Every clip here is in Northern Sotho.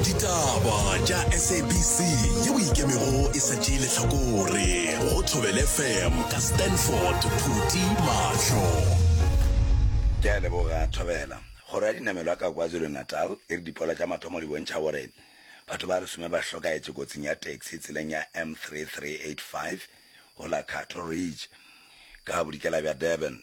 ditaba tša sabc ye o ikemego e sa tšee lehlakore go thobele fm ka stanford phuti mahlo ke a leboga thobela kgoro ya dinamelwa ka kwazulu-natal e re dipoelo tša mathomo di bontšha gore batho ba lesome ba hlokaetše kotsing ya taxi tseleng ya m3385 go la cattle ridge ka bodikela bja durban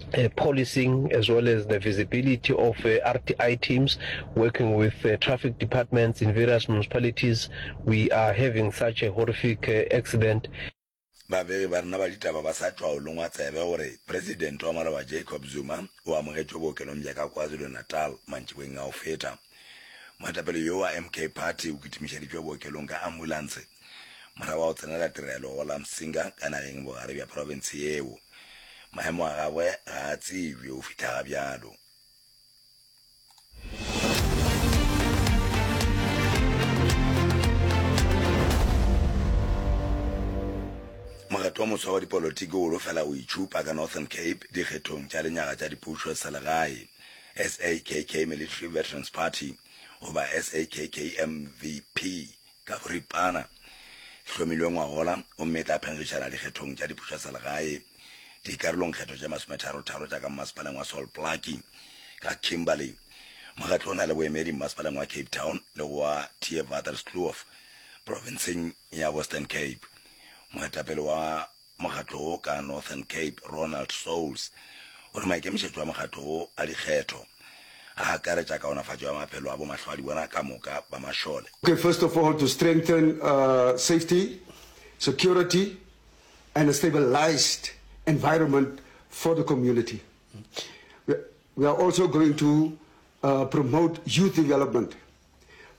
uh, policing as well as the visibility of uh, RTI teams working with uh, traffic departments in various municipalities. We are having such a horrific uh, accident. babegi ba rena ba ditaba ba sa tšwa o longwa tsebe gore presidente wa maloba jacob zuma o amogetšwe bookelong bja ka kwazulu-natal mantšibeng a go feta moetapele yo wa mk party o kitimišeditšwe bookelong ka ambulance Morago ga go tsenela tirelo go la Msinga ka nageng bogare bja profense yeo, maemo a gagwe ga a tsebje go fihla ga bjalo. Mokgatlo wa moswa wa dipolotiki o lo fela go itšhupa ka Northern Cape dikgethong tša lenyaga tša dipušo tsa selegae, SAKK Military Veterans Party, goba SAKK MVP, Ka boripana, e hlomilwe ngwagola gomme e tla phenletšana dikgethong tša dipušo tša selegae, dikarolongkgetho tše masometharotharo tša ka mmasepaleng wa Sol Plaatje, ka Kimberley. Mokgatlo o na le boemedi mmasepaleng wa Cape Town le go wa Theewaterskloof profenseng ya Western Cape. Moetapele wa Mokgatlo wo ka Northern Cape, Ronald Soules, o re maikemišetšo a mokgatlo wo a dikgetho a akaretša kaonafatšo ya maphelo a bomahlwaadibona ka moka ba mašole. Okay, first of all to strengthen safety, security and a stabilised environment for the community. We are also going to promote youth development.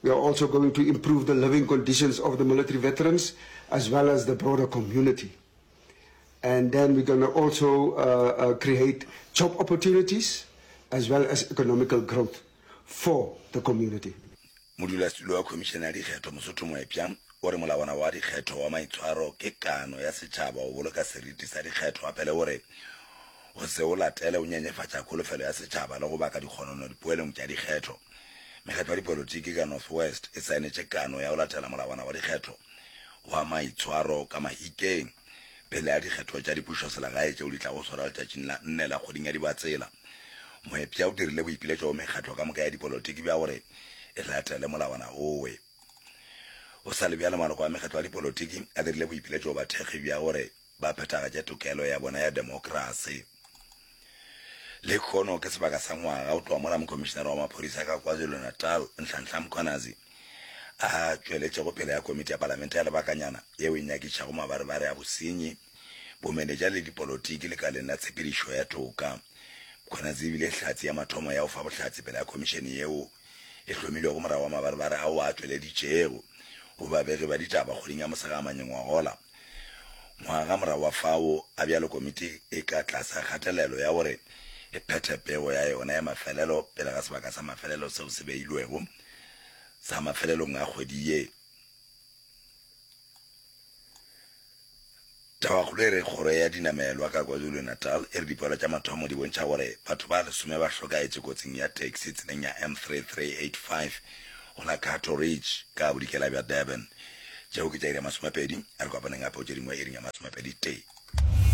We are also going to improve the living conditions of the military veterans as well as the broader community. And then we're going to also uh, uh, create job opportunities as well as economical growth for the community. modulasetulo wa khomišene ya dikgetho mosotho moepša o re molawana wa dikgetho wa maitshwaro ke kano ya setšhaba go boloka seriti sa dikgetho gape le gore go se o latele o nyenyefatša kholofelo ya setšhaba le go baka dikgonono dipoelong tša dikgetho. Mekgatlo ya dipolotiki ka North West e saenetše kano ya go latela molawana wa dikgetho wa maitshwaro ka Mahikeng pele ga dikgetho tša dipušoselegae tšeo di tlago swarwa letšatšing la nne la kgweding ya Dibatsela. Moepša o dirile boipiletšo go mekgatlo ka moka ya dipolotiki bja gore e latele molawana owe. Go sa le bjalo maloko a mekgatlo ya dipolotiki a dirile boipiletšo go bathekgi bja gore ba phethagatše tokelo ya bona ya demokrasi. Lehono ke sebaka sa ngwaga go tloga mola mokomišinara wa maphodisa ka KwaZulu-Natal, Nhlanhla Mkhwanazi, a tšweletšego pele ga komiti ya palamente ya lebakanyana yeo e nyakišago mabarebare a bosenyi, bomenetša le dipolotiki lekaleng la tshepedišo ya toka. Mkhwanazi e bile hlatse ya mathomo ya go fa bohlatse pele ga komišene yeo e hlomilwego morago ga mabarebare ao a tšweleditšego go babegi ba ditaba kgweding ya Mosegamanyong wa gola. Ngwaga morago wa fao, a bjalo komiti e ka tlasa kgatelelo ya gore e phethe pego ya yona ya mafelelo pele ga sebaka sa mafelelo seo se beilwego sa mafelelong a kgwedi ye. Tabakgolo e re, Kgoro ya Dinamelwa ka KwaZulu-Natal e re dipoelo tša mathomo di bontšha gore batho ba lesome ba hlokaetše kotsing ya taxi tseleng ya M3385 go la Cato Ridge ka bodikela bja Durban. Tšeo ke tša iri ya masomepedi, a re kopaneng gape go tše dingwe iring ya masomepedi tee.